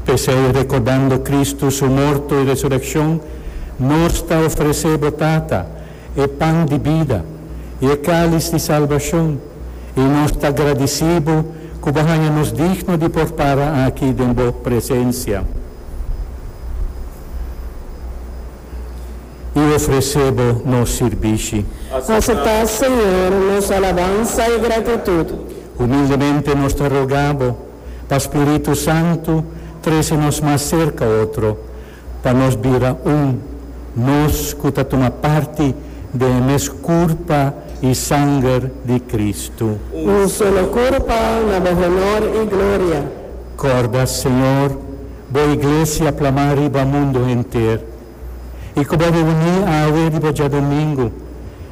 P'esei, rekordando Kristu su morto i resurekshon, nos ta ofresé bo Tata e pan di bida i e kális di salbashon, i nos ta gradisí bo ku bo haña nos digno di por para aki den bo presensia. i ofresé Bo nos sirbishi. Aseptá, Señor, nos alabansa i gratitut. Humildemente nos ta rogá Bo pa spiritu santu trese nos mas serka otro, pa nos bira un, nos ku ta tuma parti den e mes Kurpa i Sanger di Kristu. Un solo Kurpa, na Bo honor i gloria. Kòrda, Señor, Bo Iglesia plamá riba mundu henter. i ku bo reuní awe riba djadumingu,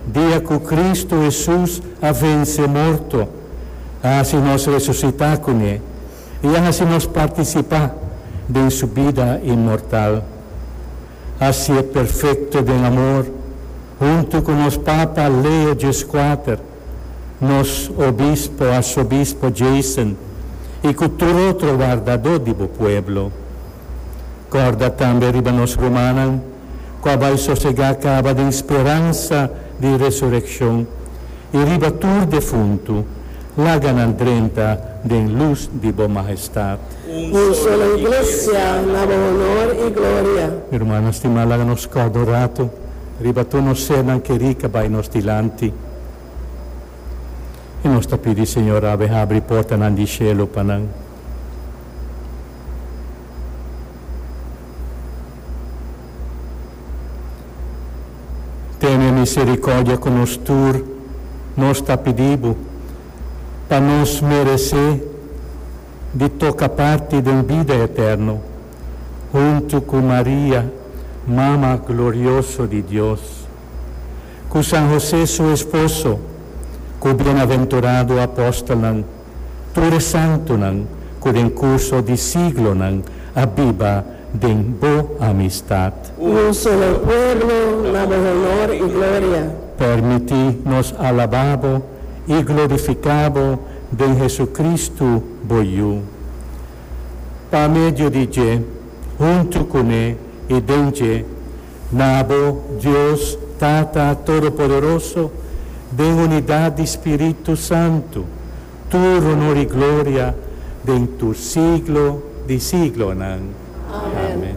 dia ku Kristu Hesus a vense morto, a hasi nos resusitá kuné i a hasi nos partisipá den su bida inmortal. Hasié perfekto den amor huntu ku nos Papa Leo Djeskwater. nos Obispo Arsobispo Jason y cu tur otro wardadó di bo pueblo. Corda tambe riba nos rumannan cu a bai sosegá caba den speransa di resureccion y riba tur defuntu, laga nan drenta den luz di bo Majestad. Un solo Iglesia, na bo honor y gloria. Mi rumannan stimá, laga nos corda un ratu. Riba tur nos sernan keri ka bai nos dilanti. I nos ta pidi, Señor, a bin habri portanan di shelu pa nan. Tene misericordia ku nos tur, nos ta pidi Bo, pa nos meresé di toka parti den bida eterno. huntu ku Maria, Mama glorioso di Dios, ku San José su esposo, ku bienaventurado apòstelnan, tur e santunan ku den kurso di siglonan a biba den bo amistat. Un solo pueblo na bo honor i gloria. Permití nos alabá bo i glorifiká bo den Jesucristo, bo Yu. Pa medio di dje, huntu ku me i den dje, na abo Dios Tata Todopoderoso, den unidat di spiritu santu, tur onor i gloria den tur siglo di siglonan. Amen.